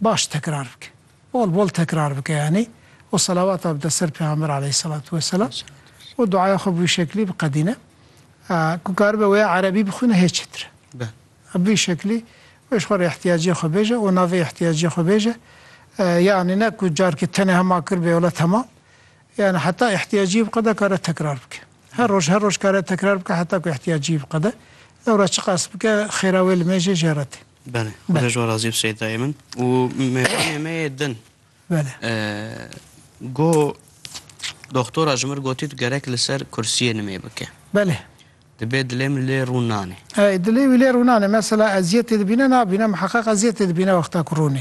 Baş tekrar bike. Bol bol tekrar bike yanî û selawata bide ser Pêxamber aleyhîsselatu weselam û duaya xwe bi wî şeklî biqedîne. Ku karibe wêya erebî bixwîne hê çêtir e. Bi vî şeklî wê ji xwe re îhtîyaciyê xwe bêje û navê îhtîyaciyê xwe bêje. Yanî ne ku carkê tenê hema kiribê wele temam. Yanî heta îhtîyaciyê biqede kare tekrar bike. Her roj her roj kare tekrar bike heta ku îhtîyaciyê biqede. Lewra çiqas bike xêra wê li mêjê jêre tê. Belê. Xuda ji we razî be Seyidayê min. Û mêvanê me yê din. Belê. Go doktora ji min gotî tu gerek li ser kursiyê nimê bike. Belê. Dibê dilê min lê rûn nanê. Ey dilê wî lê rûn nanê. Mesela eziyetê dibîne nabîne, miheqeq eziyetê dibîne wexta ku rûn